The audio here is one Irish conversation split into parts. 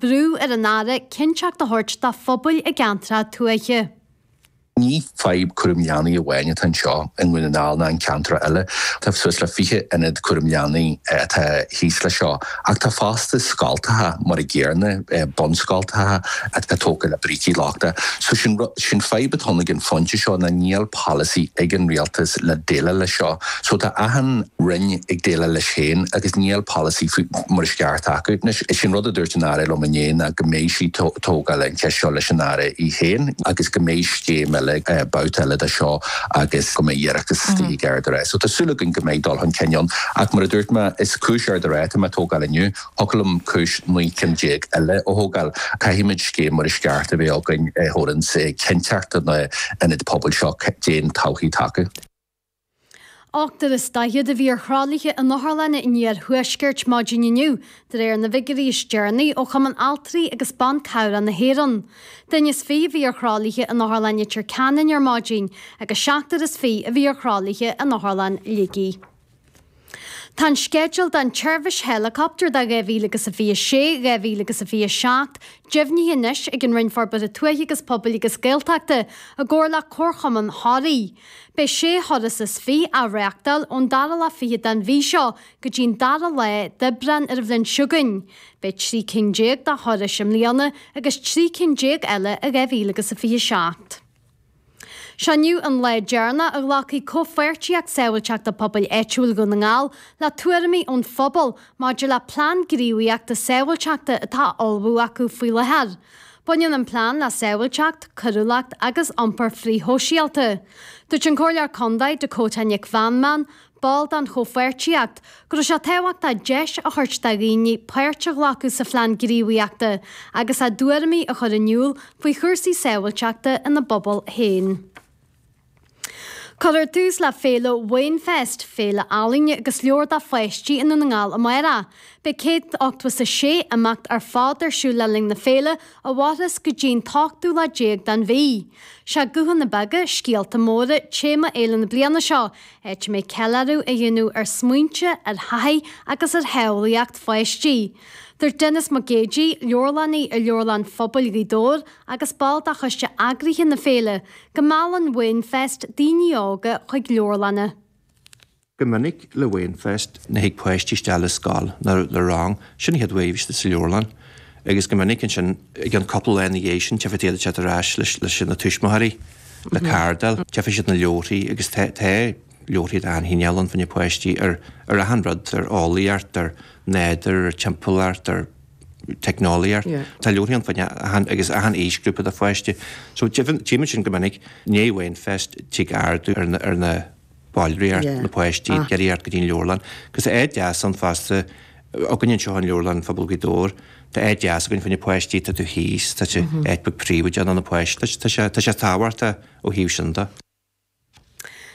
Brú ar an Aire cinnteacht a thabhairt do phobail i gceantair tuaithe. Ní fadhb cúram leanaí amháin atá anseo i nDún na nGall ná i gceantair eile. Tá suas le fiche ionad cúram leanaí atá thíos leis seo. Ach tá fosta scoilteacha, mar an gcéanna, bunscoilteacha atá tógtha le brící lochtacha. So sin rud, sin fadhb atá ann ag an phointe seo ná nach bhfuil polasaí ag an Rialtas le déileáil leis seo. So tá achan Roinn ag déileáil leis féin agus níl polasaí faoi mar is ceart acu. Sin an rud a dúirt an Aire liom inné ná go mbeidh sí ag tógáil an cheist seo leis an Aire í féin agus go mbeidh scéim eile, babhta eile de seo agus go mbeidh deireacht istigh d'Ard an Rátha. So tá súil againn go mbeidh dul chun cinn ann. Ach mar a dúirt mé, is cúis Ard an Rátha atá mé ag tógáil inniu. Thiocfadh liom cúis naoi gcinn déag eile a thógáil. Caithfimid scéim mar is ceart a bheith againn a thabharanns cinnteacht do na ionaid pobail seo d'aon todhchaí tacú. Ochtar is daichead a bhí ar thralaithe in otharlanna an iarthuaiscirt maidin inniu, de réir na bhfigiúirí is deireanaí ó Chumann Altraí agus Ban Cabhrach na hÉireann. Duine is fiche a bhí ar thralaithe in Otharlann Leitir Ceanainn ar maidin agus seachtar is fiche a bhí ar thralaithe in Otharlann Shligigh. Tá an sceideal don tseirbhís héileacaptair do 2000 agus a 26, 2000 agus a 27, deimhnithe anois ag an Roinn Forbartha Tuaithe agus Pobail agus Gaeltachta i gcomhar le Comharchumann Thoraí. Beidh sé thuras is fiche á reachtáil ón dara lá fichead den mhí seo go dtí an dara lá d'Aibreán ar an bhliain seo chugainn. Beidh trí cinn déag de thurais i mbliana agus trí cinn déag eile i 2000 agus a 27. Seo inniu an lá deireanach a ghlacfaidh Comhpháirtíocht Sábháilteachta Pobail Áitiúil Dhún na nGall le tuairimí ón phobal maidir le plean gníomhaíochta sábháilteachta atá á ullmhú acu faoi láthair. Baineann an plean le sábháilteacht, coiriúlacht agus iompar frithshóisialta. Dúirt an Comhairleoir Contae, Dakota Nic Mheanman, Ball den chomhpháirtíocht, go raibh sé tábhachtach deis a thabhairt do dhaoine páirt a ghlacadh sa phlean gníomhaíochta agus a dtuairimí a chur in iúl faoi chúrsaí sábháilteachta ina bpobal féin. Cuirfear tús le féile Wainfest, féile ealaíne agus leabhar do pháistí i nDún na nGall amárach. Beidh céad ochtó is a sé imeacht ar fad ar siúl le linn na féile, a mhairfeas go dtí'n t-ochtú lá déag den mhí. Sé 'Guthanna Beaga, Scéalta Móra' téama fhéile na bliana seo, Áit a mbeidh ceiliúradh a dhéanamh ar smaointe, ar thaithí agus ar shamhlaíocht pháistí. Dúirt Denis Mac Géidigh, leabharlannaí i Leabharlann Phobail Ghaoth Dobhair agus ball de choiste eagraithe na féile, go meallann Wainfest daoine óga chuig leabharlanna. Go minic le Wainfest, nuair a thig páistí isteach le scoil ná le rang, sin an chéad uair istigh sa leabharlann agus go minic ansin, i gceann cúpla lá ina dhiaidh sin, tiocfaidh siad ar ais leis na tuismitheoirí. le cardail, tchífidh siad na leabharthaí agus tá tá leabharthaí de achan chineál ann fá choinne páistí ar ar achan rud, ar eolaíocht, ar nádúr, ar timpeallacht, ar teicneolaíocht. Yeah. Tá leabharthaí ann fá choinne achan agus achan aoisghrúpa de pháiste. So tchí muid sin go minic, i ndiaidh Wainfest tig ardú ar na ar na ballraíocht na páistí ag iarraidh theacht go dtí an leabharlann. Agus tá áit deas ann fosta againn anseo in Leabharlann Phobail Ghaoth Dobhair, tá áit deas againn fá choinne páistí atá taobh thíos, tá sé áit beag príobháideach ann do na páistí, tá sé, tá sé tábhachtach ó thaobh sin de.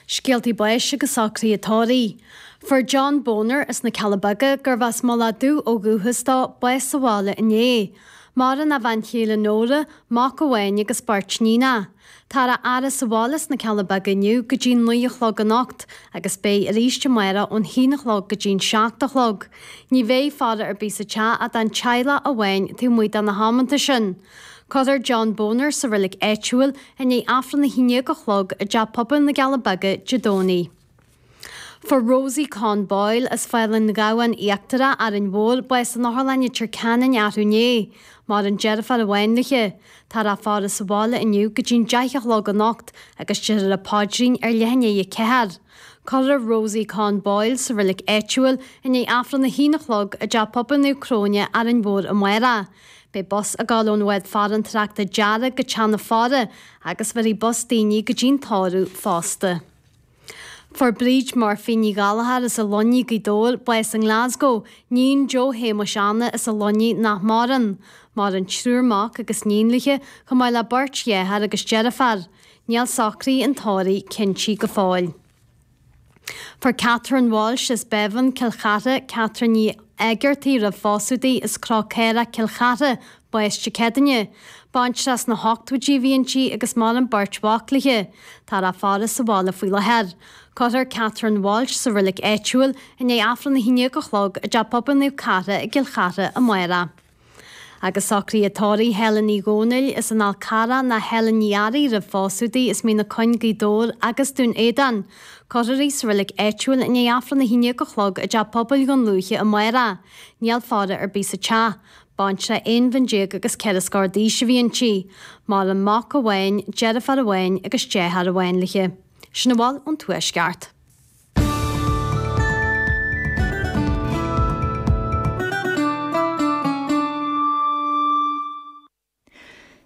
Scéaltaí báis agus socruithe tórraimh. Fuair John Boner as na Cealla Beaga, gurbh as Mullach Dubh ó dhúchas dó, bás sa bhaile inné. Maireann a bhean chéile Nóra, mac amháin agus beirt níonach. Táthar á fhaire sa bhaile sna Cealla Beaga inniu go dtí an naoi a chlog anocht agus beidh arís amárach ón haon a chlog go dtí an seacht a chlog. Ní bheidh faire ar bith sa teach ach don teaghlach amháin taobh amuigh de na hamanta sin. Cuirfear John Boner sa reilig áitiúil i ndiaidh Aifreann a haon déag a chlog i dTeach Pobail na gCealla Beaga Dé Domhnaigh. Fuair Rosie Con Boyle, as Fál an Ghabhann Íochtarach, Árainn Mhór, bás san otharlann i Leitir Ceanainn arú inné. Maireann deirfiúr amháin léithe. Táthar á faire sa bhaile inniu go dtí'n deich a chlog anocht agus deirfear an paidrín ar leath i ndiaidh a 4. Cuirfear Rosie Con Boyle sa reilig áitiúil i ndiaidh Aifreann a haon a chlog i dTeach Pobail Naomh Cróine, Árainn Mhór amárach. Beidh bus ag dul ón Bhád Farantóireachta Dearg go teach na faire agus bheirfidh bus daoine go dtí'n Tórramh fosta. Fuair Bríd Murphy Ní Ghallchóir as an Luinnigh, Gaoth Dobhair, bás i nGlasgow, níon Joe Shéamuis Anna as an Luinnigh nach maireann. Maireann triúr mac agus níon léithe, chomh maith le beirt dheartháir agus deirfiúr. Níl socruithe an tórraimh cinntithe go fóill. Fuair Catherine Walsh as Bábhún, Cill Chartha, Catherine Ní Éigeartaigh roimh phósadh di as Cró Caorach, Cill Chartha, bás Dé Céadaoine, baintreach sna hochtóidí a bhí inti agus maireann beirt mhac léithe. Táthar á faire sa bhaile faoi láthair. Cuirfear Catherine Walsh sa reilig áitiúil i ndiaidh Aifreann a haon déag a chlog i dTeach Pobail Naomh Cartha i gCill Chartha amárach. Agus socruithe tórraimh Helen Uí Dhomhnaill, as an Fhál Carrach ná Helen Ní Fhearraigh roimh phósadh di, as Mín na Cuinge Gaoth Dobhair agus Dún Éideann. Cuirfear í sa reilig áitiúil i ndiaidh Aifreann a haon déag a chlog i dTeach Pobail Dhún Lúiche amárach. Níl faire ar bith sa teach. Baintreach aon bhliain déag agus ceithre scór d'aois a bhí inti, maireann mac amháin, deirfiúr amháin agus deartháir amháin léithe. Sin a bhfuil ón Tuaisceart.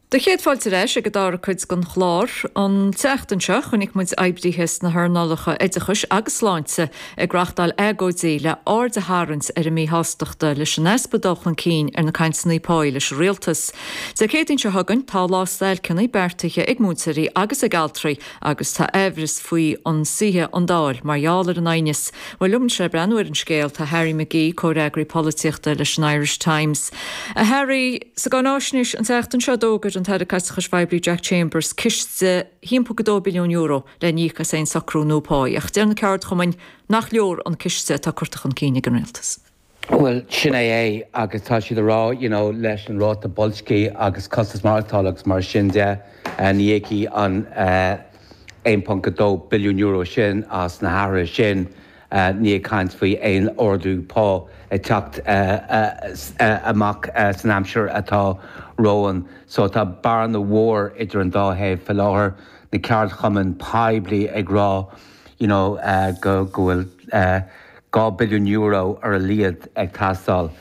Bhur gcéad fáilte ar ais ag an dara cuid den chlár. An tseachtain seo, chonaic muid oibrithe sna hearnálacha oideachais agus sláinte ag reáchtáil agóidí le aird a tharraingt ar a míshástacht leis an easpa dul chun cinn ar na cainteanna pá leis an rialtas. Dé Céadaoin seo chugainn, tá lá stailceanna beartaithe ag múinteoirí agus ag altraí agus tá amhras faoi an suífidh an Dáil mar gheall ar an aighneas. Bhuel, liom anseo ag breathnú ar an scéal, tá Harry McGee, Comhfhreagraí Polaitíochta leis an Irish Times. A Harry. Sa gcáinaisnéis an tseachtain seo, d'fhógair an tAire Caiteachais Phoiblí Jack Chambers ciste thimpeall go €2 billiún le n-íoc as aon socrú nua pá, ach deir na ceardchumainn nach leor an ciste atá curtha chun cinn ag an Rialtas. Bhuel, sin é é, agus tá siad a rá, you know, leis an ráta boilscí agus costas maireachtála agus mar sin de, ní íocfaidh an €1.2 billiún sin as na harduithe sin. níl ag caint faoi aon ardú pá ag teacht amach san aimsir atá romhainn. So tá bearna mhór idir an dá thaobh faoi láthair, na ceardchumainn poiblí ag rá you know go bhfuil €2 billiún ar a laghad ag teastáil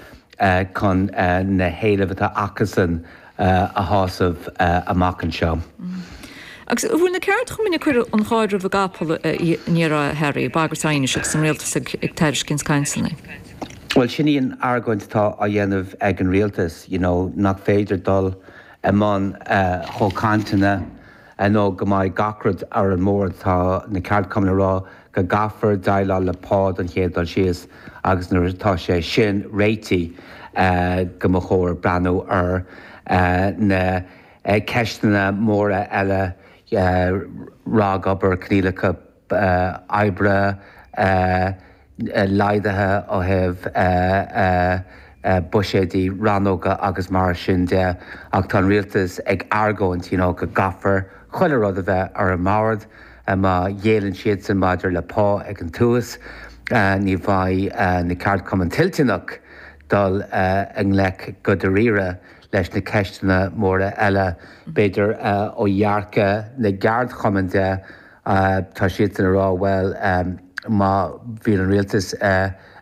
chun na héilimh atá acusan a a shásamh amach anseo. Agus bhfuil na ceardchumainn ag cur an chairr roimh an gcapall an iarraidh seo a Harry, bagairt aighnis agus an rialtas ag tairiscint cainteanna? Bhuel, sin í an argóint atá á dhéanamh ag an rialtas, you know, nach féidir dul i mbun chomhchainteanna nó go mbeidh gach rud ar an mbord, tá na ceardchumainn ag rá go gcaithfear déileáil le pá den chéad dul síos agus nuair atá sé sin réitithe go mba chóir breathnú ar na ceisteanna móra eile, ragobair, coinníollacha oibre laghdaithe ó thaobh buiséidí ranna agus mar sin de, ach tá an rialtas ag argóint, you know, go gcaithfear chuile rud a bheith ar an mbord. Má ghéilleann siadsan maidir le pá ag an tús, ní bheidh na ceardchumainn toilteanach dul i ngleic go dáiríre leis na ceisteanna móra eile, b'fhéidir, ó dhearcadh na gceardchumann de, tá siadsan ag rá, bhuel, má bhíonn an rialtas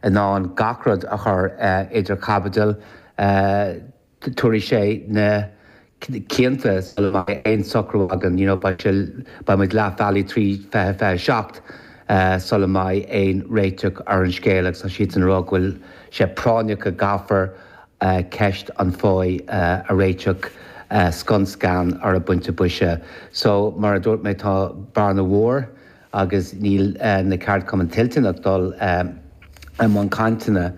in ann gach rud a chur idir chaibidil, tógfaidh sé na cianta sula mbeidh aon socrú againn, you know, beidh muid leath bealaigh trí fiche, fiche a seacht sula mbeidh aon réiteach ar an scéal agus tá siadsan ag rá go bhfuil sé práinneach go gcaithfear ceist an phá a réiteach scun scan ar an bpointe boise. So, mar a dúirt mé, tá bearna mhór agus níl na ceardchumainn toilteanach dul i mbun cainteanna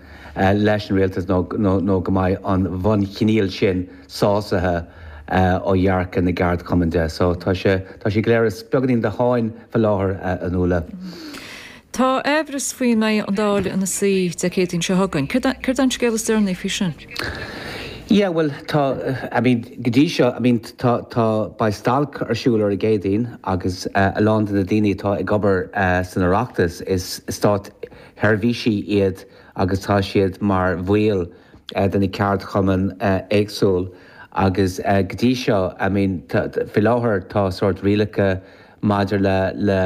leis an rialtas nó go mbeidh an bhunchoinníoll sin sásaithe ó dhearcadh na gceardchumann de. So, tá sé go léir i mbeagáinín de sháinn fá láthair, a Nuala. Tá amhras faoi an mbeidh an Dáil ina suí Dé Céadaoin seo chugainn. Céard é an scéal is deireanaí faoi sin? Yeah, bhuel, tá, I mean, go dtí seo, I mean, tá, tá, beidh stailc ar siúl ar an gCéadaoin agus a lán de na daoine atá ag obair san Oireachtas, is státsheirbhísigh iad agus tá siad mar bhaill de na ceardchumainn éagsúil agus go dtí seo, I mean, faoi láthair tá sórt rialacha, Maidir le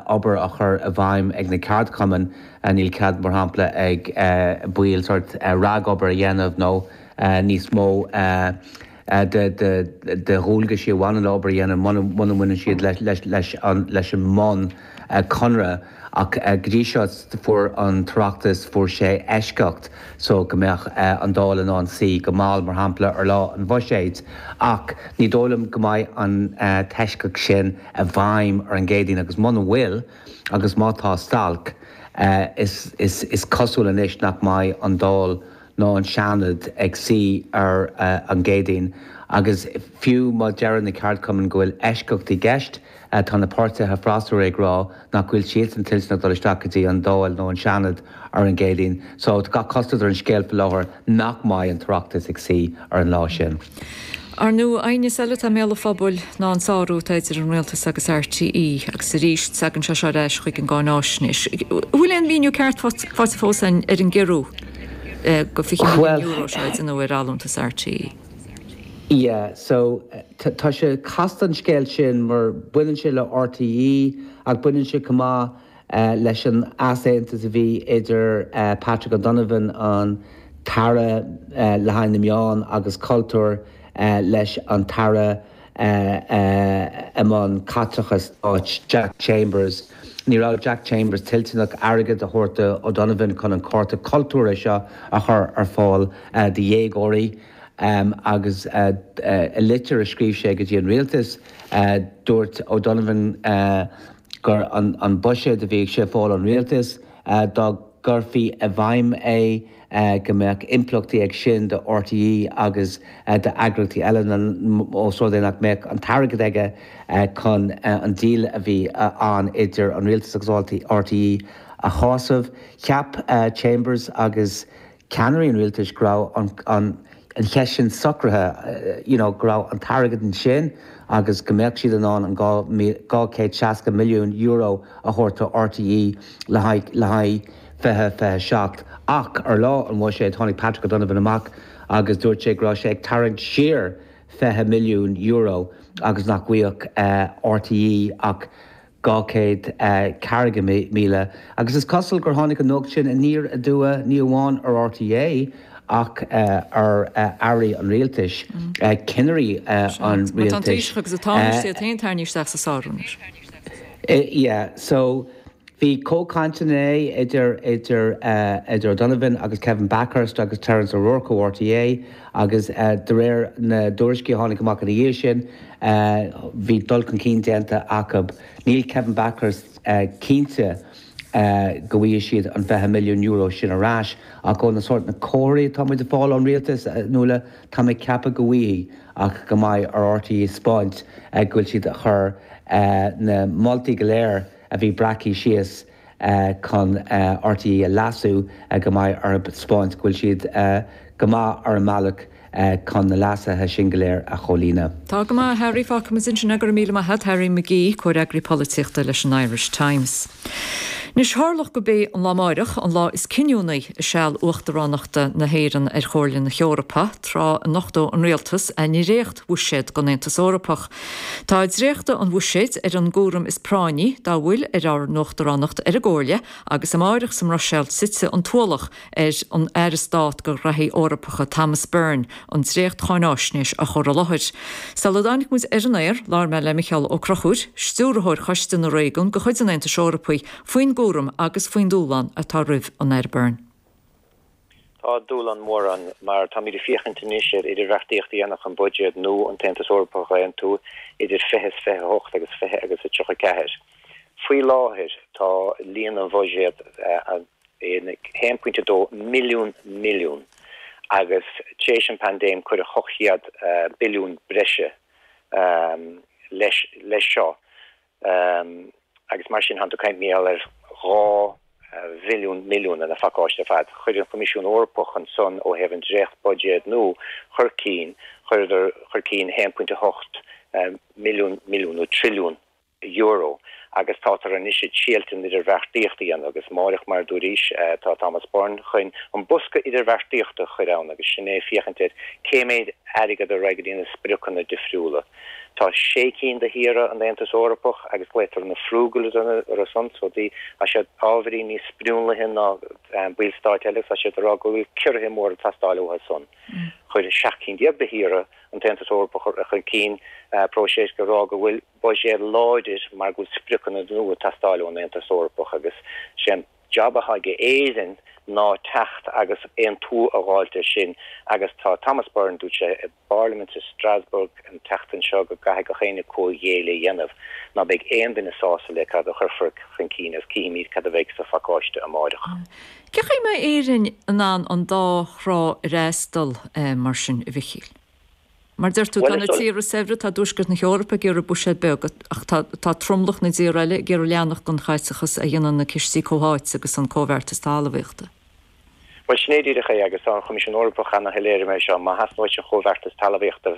obair á chur i bhfeidhm ag na ceardchumainn, níl cead, mar shampla, ag baill sórt ragobair a dhéanamh nó níos mó de dhualgaisí a bhaineann le obair a dhéanamh muna mbaineann siad leis an mbun conradh. Ach go dtí seo, fuair an tOireachtas, fuair sé eisceacht so go mbeadh an Dáil in ann suí go mall, mar shampla, ar lá an Bhuiséid. Ach ní dóigh liom go mbeidh an t-eisceacht sin i bhfeidhm ar an gCéadaoin, agus muna bhfuil, agus má tá stailc, is cosúil anois nach mbeidh an Dáil ná an Seanad ag suí ar an gCéadaoin. Agus fiú má deir na ceardchumainn go bhfuil eisceacht i gceist, Tá na páirtithe freasúra ag rá nach bhfuil siadsan toilteanach dul isteach go dtí an Dáil nó an Seanad ar an gCéadaoin so tá gach cosúlacht ar an scéal faoi láthair nach mbeidh an tOireachtas ag suí ar an lá sin. Ar ndóigh, aighneas eile atá i mbéal an phobail ná an sárú atá idir an Rialtas agus RTÉ agus arís tagann sé seo ar ais chuig an gcáináisnéis. An bhfuil aon mhíniú ceart faighte fós ar an gciorrú go €20 milliún seo a deineadh ar allúntas RTÉ? Yeah, so, tá sé casta an scéal sin mar baineann sé le RTÉ ach baineann sé chomh maith leis an easaontas a bhí idir Patrick O'Donovan, an tAire le haghaidh na Meáin agus Cultúir leis an tAire i mbun caiteachais stáit Jack Chambers. Ní raibh Jack Chambers toilteanach airgead a thabhairt do O'Donovan chun an cárta cultúrtha seo a chur ar fáil do dhéagóirí agus i litir a scríobh sé go dtí an rialtas dúirt O'Donovan, gur an buiséad a bhí sé ag fáil ón rialtas, dá gcuirfí i bhfeidhm é, go mbeadh impleachtaí ag sin do RTÉ agus d'eagraíochtaí eile ós rud é nach mbeadh an t-airgead aige chun an deal a bhí ann idir an rialtas agus RTÉ a shásamh. Cheap Chambers agus. ceannairí an rialtais go raibh an cheist sin socraithe, you know go raibh an t-airgead ansin agus go mbeadh siad in ann an €260 milliún a thabhairt do RTÉ le haghaidh, le haghaidh 2027. Ach ar lá an bhuiséid tháinig Patrick O'Donovan amach agus dúirt sé go raibh sé ag tarraingt siar €20 milliún agus nach bhfaigheadh RTÉ ach. 240,000, agus is cosúil gur tháinig an nuacht sin aniar aduaidh ní amháin ar RTÉ ach ar airí an rialtais, cinnirí an rialtais. Seans. Mar tá an taoiseach agus an tánaiste iad féin tarraingthe isteach sa sárú anois. Yeah. So, bhí comhchainteanna idir O'Donovan agus Kevin Bakhurst agus Terence O'Rourke ó RTÉ. agus de réir na dtuairiscí a tháinig amach ina dhiaidh sin, bhí dul chun cinn déanta acu. Níl Kevin Bakhurst cinnte go bhfaighidh siad an €20 milliún sin ar ais, ach ó na sórt na comharthaí atá muid ag fáil ón rialtas, a Nuala, tá mé ag ceapadh go bhfaighidh, ach go mbeidh ar RTÉ a thaispeáint go bhfuil siad ag cur na moltaí go léir a bhí breactha síos, chun RTÉ a leasú go mbeidh orthu a thaispeáint go bhfuil siad go maith ar a mbealach chun na leasuithe sin go léir a chomhlíonadh. Tá go maith, a Harry, fágfaimid ansin é, go raibh míle maith agat, Harry McGee, Comhfhreagraí Polaitíochta leis an Irish Times. Anois, tharlódh gurb é an lá amáireach an lá is cinniúnaí i seal uachtaránachta na hÉireann ar Chomhairle na hEorpa, tráth a nochtóidh an rialtas a ndréacht-Bhuiséad don Aontas Eorpach. Tá dréachtadh an Bhuiséid ar an gcúram is práinní dá bhfuil ar ár nUachtaránacht ar an gComhairle agus amárach sa mBruiséil titfidh an t-ualach ar an Aire Stáit do Ghraithí Eorpacha, Thomas Byrne, an dréacht-cháinaisnéis a chur i láthair. Sula dtáinig muid ar an aer, labhair mé le Micheál Ó Conchúir, Stiúrthóir Choiste na Réigiún de chuid an Aontais Eorpaigh, faoin gcúram agus faoin dúshlán atá roimh an Aire Byrne. Tá dúshlán mór ann, mar táimid ag féachaint anois ar idirbheartaíocht a dhéanamh chun buiséad nua an tAontas Eorpach a aontú idir fiche is fiche a hocht agus fiche agus a tríocha ceathair. Faoi láthair tá líon an bhuiséad in haon pointe dó mhilliún milliún agus tar éis an paindéim cuireadh ocht gcéad billiún breise leis seo. Um agus mar sin, tánn tú ag caint timpeall ar dhá mhilliún milliún ina phacáiste ar fad. Chuir an Coimisiún Eorpach ansan ó thaobh an dréachtbhuiséad nua chun cinn, chuireadar chun cinn 1.8 milliún milliún nó trilliún euro agus tátar anois ag triail an idirbheartaíocht a dhéanamh agus amárach, mar a dúraís, tá Thomas Byrne chun an bosca idirbheartaíochta a chur ann agus sin é féachaint ar cé méid airgead a raghaidh go dtí na spriocanna difriúla. Tá sé cinn de thíortha an Aontais Eorpach agus glaotar na Frugals orthu san so tá siad ábhairín níos spriúnlaithe ná baill stáit eile tá siad ag rá go bhfuil ciorruithe móra ag teastáil uathu ansan chuir seacht cinn déag de thíortha an tAontas Eorpach chun cinn próiseas á rá go bhfuil buiséad láidir mar go bhfuil spriocanna nua ag teastáil ón Aontas Eorpach agus sin an jab atá ag Éirinn ná teacht agus aontú a dh'fháilt air sin agus tá Thomas Byrne, dúirt sé i bParlaimint i Strasbourg an tseachtain seo go gcaithfidh gach éinne comhghéilleadh a dhéanamh ná beidh aon duine sásta le cad a chuirfear chun cinn agus cífimid cad a bheidh sa phacáiste amáireach. Cífimid an mbeidh Éirinn in ann an dá thrá a fhreastal mar sin, a Mhichíl. Mar a deir tú, tá na tíortha saibhre, tá tuaisceart na hEorpa ag iarraidh buiséad beag, ach tá tromlach na dtíortha eile ag iarraidh leanacht den chaiteachas a dhéanann na cistí comhtháite agus an Comhbheartas Talmhaíochta. Bhuel, sin é díreach é, agus tá an Coimisiún Eorpach ana-shoiléir mar gheall air seo, má theastaíonn uait an Comhbheartas Talmhaíochta,